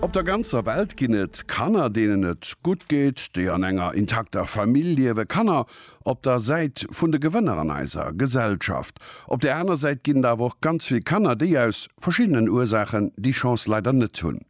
Op der ganzer Welt ginn et Kanner, deenen et gutt geet, déi an enger intakter Famill liewen, Kanner op der Säit vun de Gewënner an eiser Gesellschaft. Op där aner Säit ginn et awer och ganz vill Kanner, déi aus verschiddenen Ursaachen déi Chance leider net hunn.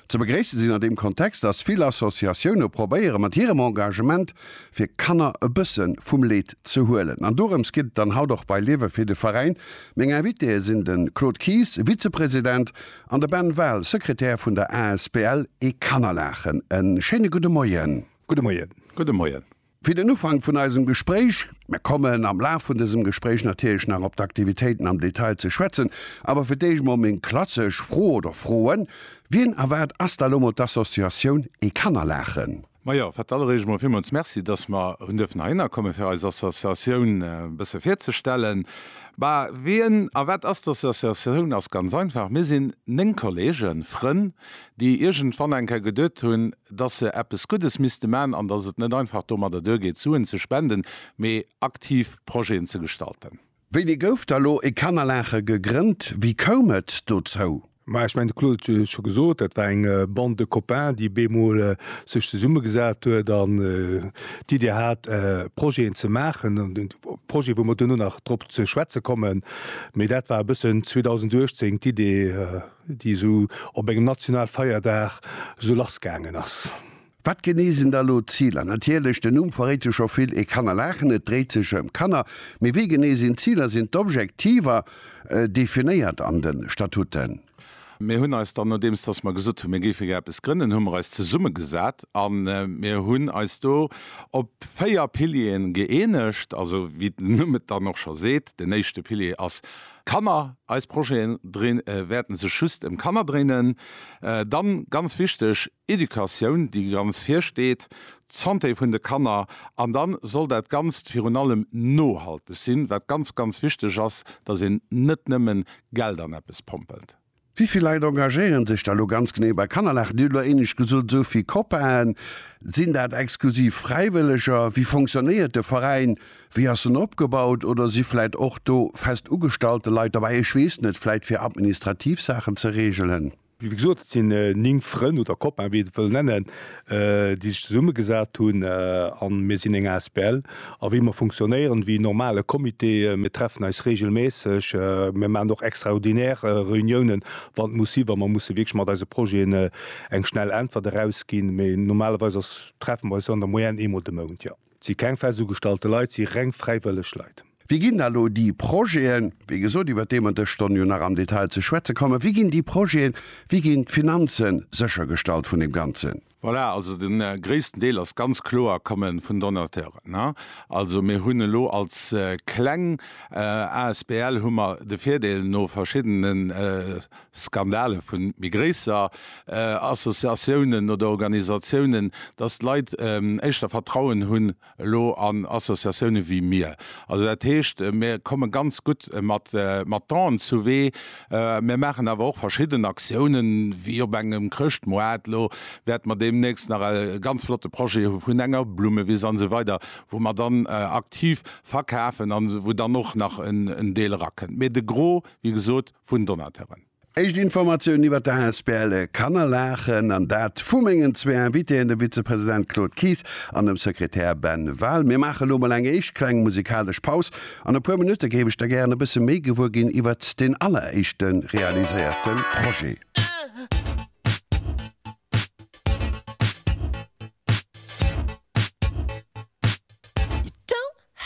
Ze begréisse sinn an deem Kontext, dass vill Associatioune probéiere mat hirem Engagement fir Kanner e bësse vum Leed ze huelen. An dorëms geet et dann haut och bei Liewe fir de Veräin. Meng Invitéë sinn de Claude Kies, Vizepresident, an de Ben Wahl, Sekretär vun der asbl E Kannerlaachen. E schéine gudde Moien. Gudde Moien. Gudde Moien. Fir den Ufank vun eisem Gespréich, mer kommen am Laf vun dësem Gespréich natierlech nach op d'Aktivitéiten am Detail ze schwätzen, awer fir d'éischt mol meng klassesch Fro oder Froen, Wien a wat ass da lo mol d'Associatioun E Kannerlaachen? Majo, fir d'alleréischt emol villmools Merci, dass mer hunn duerfen heihinner kommen, fir eis Associatioun e bësse virzestellen. Bah, wien a wat ass d'Associatioun? Ass ganz einfach, Mir sinn néng Kolleegen, Frënn, déi iergendwann eng Kéier geduet hunn, dass se eppes Guddes misste man an dass et net einfach domadder duergeet, Suen ze spenden, mee aktiv Projeten ze gestalten. Wéini gouf da lo e Kannerlache gegrënnt? Wéi koum et dozou? Maja, ech mengen de Claude huet jo scho gesot, dat war eng Bande de copains déi op eemol sech zesumme gesat huet an d'Idee hat Projeten ze maachen, Projete wou mer duerno nach drop ze schwätze kommen, mee dat war e bëssen 2018 d'Idee déi esou op engem Nationalfeierdag esou lass gaangen ass. Wat genee sinn da lo d'Ziler? Natierlech, den Numm verréit jo scho vill, ee kann erlaachen, et dréit sech ëm Kanner. Mee wéi genee sinn d'Ziler, sinn d'Objektiver definéiert an de Statuten? Mir hunn eis dann, nodeems dass mer gesot hunn, mir géife gär eppes grënnen, hu mer eis zesummegesat a mir hunn eis do op véier Piliere gëeenegt. Also wéi den Numm et dann och scho seet, den éischte Pilier ass Kanner. Eis Projeten wäerten sech just ëm Kanner dréinen. Dann, ganz wichteg, Educatioun, déi ganz vir steet, d'Santé vun de Kanner, an da soll dat Ganzt virun allem nohalteg sinn, wat ganz, ganz wichteg ass, dass een net nëmme Geld an eppes pompelt. Wéi vill Leit engagéiere sech da lo ganz genee bei Kannerlach? Dir hutt elo éinescht gesot, esou vill Copaen. Sinn dat exklusiv Fräiwëlleger? Wéi fonctionnéiert de Veräin? Wéi ass en opgebaut? Oder si vläit och do fest ugestallte Leit derbäi, ech weess net, vläit fir administrativ Saachen ze reegelen? Wéi gesot, et sinn 9 Frënn oder Copains, wéi een et wëll nennen, déi sech zesummegesat hunn an mir sinn eng asbl. A wéi mer funktionéieren, wéi en normale Comité, mir treffen eis reegelméisseg, mir maachen och extraordinär Reuniounen, wann et muss sinn, wa mer musse wierklech mat eise Projeten eng schnell Äntwert erausginn. Mee normalerweis ass, treffe mer eis an der Moyenne eemol de Mount, jo. Et si keng fest ugestallte Leit, et si reng fräiwëlleg Leit. Wéi ginn da lo déi Projeten, wéi gesot, iwwert déi mer dës Stonn jo nach am Detail ze schwätze kommen, wéi ginn déi Projeten, wéi ginn d'Finanze séchergestallt vun deem Ganzen? Voilà, also de gréissten Deel ass ganz kloer, komme vun Donateuren. Also mir hunn elo als kleng asbl hu mer de Virdeel no verschiddene. Skandale vun méi gréisser Associatiounen oder Organisatiounen, dass d'Leit éischter Vertrauen hunn elo an Associatiounen wéi mir. Also dat heescht, mir komme ganz gutt mat mat d'En zu Wee. Mir maachen awer och verschidden Aktiounen, wéi op engem Chrëschtmoart. Elo wäerte mer deemnächst nach e ganz flotte Projet hu vun enger Blummewiss an esou weider, wou mer dann aktiv verkafen an wou dann och nach en Deel erakënnt. Mee de Gros, wéi gesot, vun Donateuren. Éischt Informatiounen iwwer der asbl Kannerlaken, an dat vu mengen zwee Invitéen, dem Vizepresident Claude Kies an dem Sekretär Ben Wahl. Mir maache lo mol eng éischt kleng musikalesch Paus. An e puer Minutte géif ech da gären e bësse méi gewuer ginn iwwert deen alleréischte realiséierte Projet.